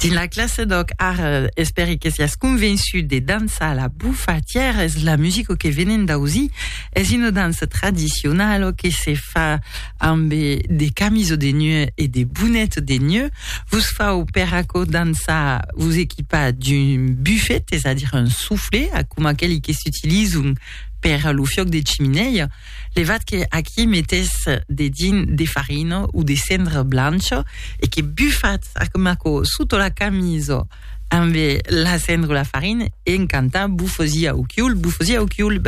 Dins la classe d'òc, ara, espèri que siás convençut de dançar la bufatièra, es la musica que venem d'ausir. Es una dança tradicionala que se fa ambe de camisa de neu e de bonet de neu. Vos fau per aquò dançar, vos equipar d'un bufet, es a dire un soufflet, coma aqueli que s'utilizan per lo fiòc de chiminèia, Levat que aquí metés de din de farina o de cendra blancha e que bufats ac maco soto la camisa ambe la cendra o la farina e en cantar bufosi au chiul, bufosi au chiul,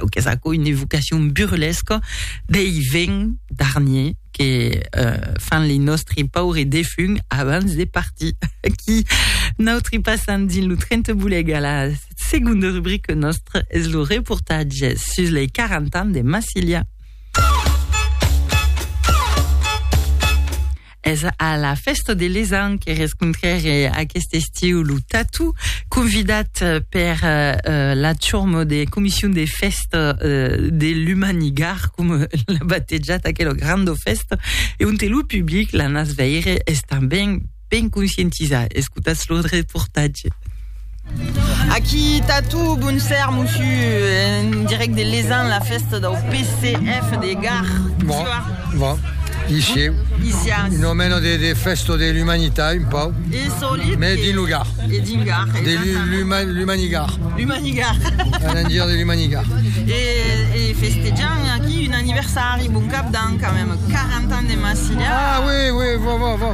au qu'es aquò une evocacion burlesca dei vents d'Arnier que euh, fan li nòstri paure defunt abans de partir. Aquí, nautri passam dins lo tren te boleg a la Segonda rubrica nòstra es lo reportatge sus lei 40 ans de Massilia. Es a la festa de l'Esan que rescontrèré aquest estiu lo Tatu, convidat per uh, la chormo de Comission de Festa uh, de l'Humanigar, com l'ha batejat aquela granda festa, e on te lo public, la nas veire, es tanben ben conscientizar. Escotatz lo reportatge. Aquí Tatu, bon ser, mossu, en direct de Lezan, la festa del PCF de Gar. Bon, bon. Ici, Isias. un omeno de, de festo de l'umanità, un pau, E solit. mais din lo Gar, E din Gar. de l'u- exactament. l'uma- l'umanigar, L'umanigar. un endir de l'umanigar. e, e festejan aquí un aniversari, bon cap d'an, quand même. 40 ans de Massilia. Ah oui, oui, bon, bon, bon.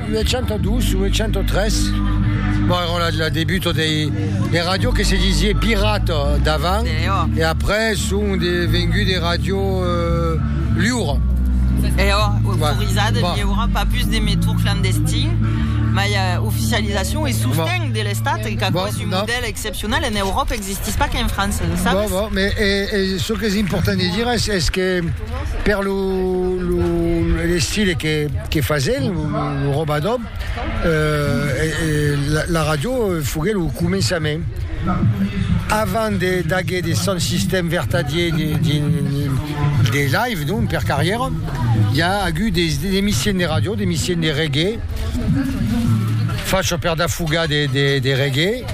802, 803, bon era la, la debuto dei, de radio que se disie pirata davant, Eo. e après son de vengut de radio euh, liura. Eo, autorizada Bon. liura, pas plus de metour clandestin, mai eh, oficializacion e sosteng de l'Estat, e qu'aquò Bon, es un no. modèl excepcional en Euròpa, existís pas qu'en França, lo sabes? Bon, bon, mais e, e, çò qu'es important de dire es, es que Per lo l'estile que fasèn lo robador, la ràdio foguèt lo començament. Avant d'aguer de son sistèm vertadier de live, non per carrièra, i a agut de emissions de ràdio, d'emissions de reggae, facha per dafugar de reggae.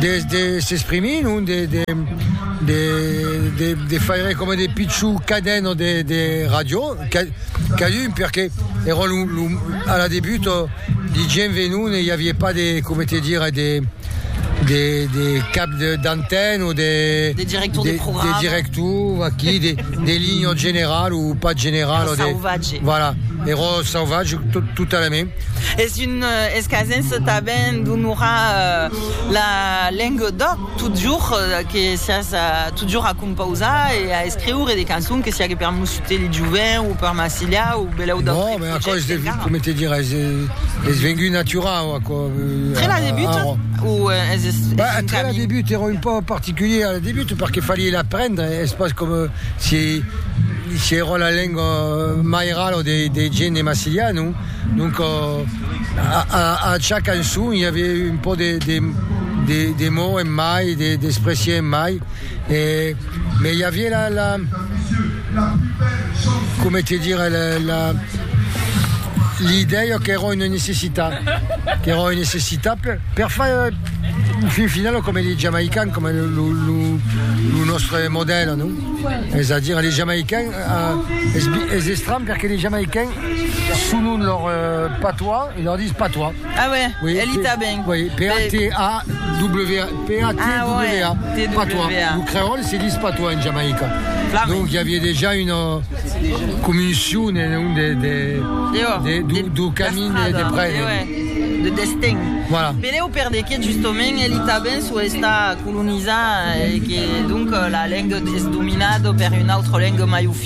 Des de s'exprimir, non? De de de de de faire coma de pichon caden o de de ràdio ca cadun perque èra lo lo a la debut de gent venon e i aviá pas de coma te dire de de de cap de d'antèn o de de director de programa de director aquí de de linha general o pas general o de sauvatge voilà èra sauvatge totalament. Es un escasen se taben d'onorar la lenga d'òc totjorn que siás totjorn a compausar e a escriure de cançons que siague per Mossutet le Joven o per Marsilha o belèu d'autres projèctes. Non, aquò es de, coma te dirai, es vengut naturau, aquò. Tre la debut? O es un camin? Ben, tre la debut, èra un pauc particulier a la debut perque falié l'aprendre, es pas coma si èra la lenga mairala de gent de Marsilha, non? Donc a cha cançon i aviá un pò de mots en mai, d'expressies en mai, mès i aviá la, coma te dire, l'idèia qu'èra una necessitat, qu'èra una necessitat per far, en fin final, coma li Jamaicans, coma lo nòstre modèl, non? Es a dire, li Jamaicans, es estranh perque li Jamaicans, Selon lor patois, e lor dis patois. Ah ouais, oui, elle y t'a ben. Oui, P-A-T-A-W-A, P-A-T-W-A, patois. Le creole se dis patois en Jamaïca. Donc, il y avait déjà une commission de camin et de près. De destin. Voilà. Pereu per de qué, justement, elle y t'a ben sou esta colonisada et que, donc, la lengue es dominada per une autre lengue mai oficiau.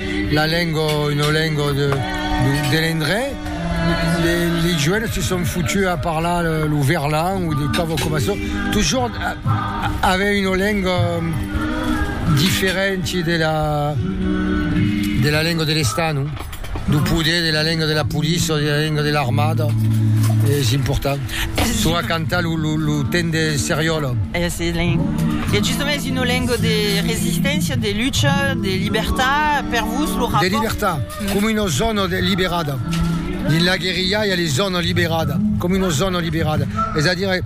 La lengo, una lengo de de l'endrech, les joenes se son foutus a parlar lo verlan ou des cauves coma çò, toujours avec une lengo diferenti de la de la lengo de l'Estat, non? Du poder, de la lengo de la police, de la lengo de l'armada, es important. Tu a cantar lo, lo, lo temps de seriòla. Eh, se len. E justement es una lenga de resisténcia, de lucha, de libertat, per vos lo rapòrt. De libertat, coma una zòna de liberada. Dins la guerrilha i a les zònas liberada, coma una zòna liberada. Es a dire,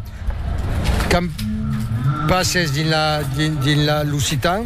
quand passes dins la, dins, dins la, l'occitan,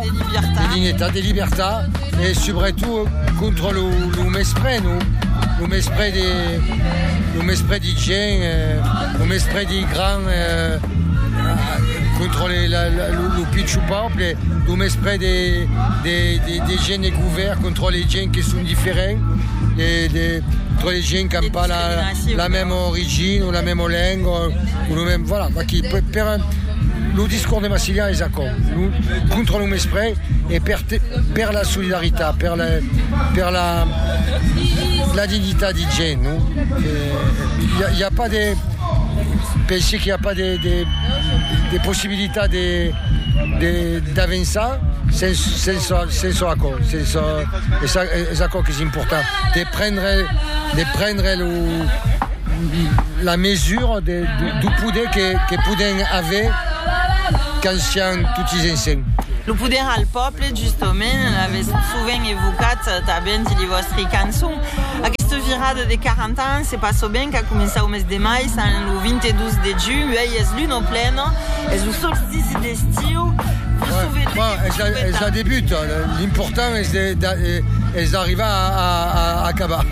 de dignitat, de libertat e subretot contra lo mespre, no? Lo mespre de, lo mespre de gent, lo mespre de grand contra lo pichon pòble, lo mespre de gent de govèrn contra de gent que son diferents, contra de gent qu'an pas la mèma origina o la mèma lenga o lo mèm, voilà, lo discors de Massiliá es aquò. Contra lo mespres e per la solidaritat, per la dignitat de gent. I a pas de pensi que i a pas de possibilitat d'avançar sens çò aquò. Es aquò qu'es important. de prendre, de prendre lo, la mesura de, du, du poder que, que podem aver quand siam totis ensems. Lo poder al pòble, justament, l'avètz sovent evocat tanben dins li vòstri cançons. Aquesta virada de 40 ans, se pas sovent qu'a començat au mes de mai, sant lo 22 de junh, uèi es l'una plena, es lo solstici de. Estiu, vos souvenètz que vos souvenètz. Es un debut, l'important es d'arribar a acabar.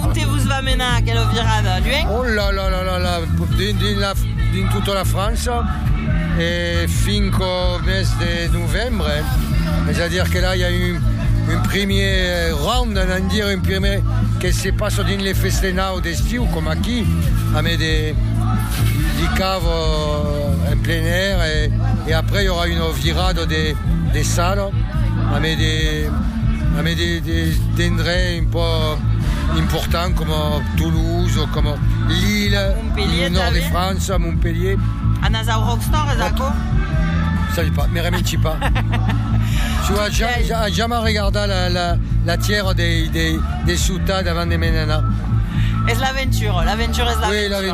Onte vos va menar aquela virada, luènh? Oh la la la la la, dins tota la França e finc au mes de novembre, es a dire que la i a un primièr round, an a dire un primièr que se passa dins le festenau d'estiu coma aquí, a me de Ava en plein air e après i aurà una virada de sala amé des endrets un pauc importants coma Toulouse, coma Lille, lo nòrd de França, Montpellier. Anas au Rockstar es aquò? Sabi pas, me reminci pas. Su a jamai regardat la tièra de suta davant de me'n anar. Es l'aventura, l'aventura es l'aventura.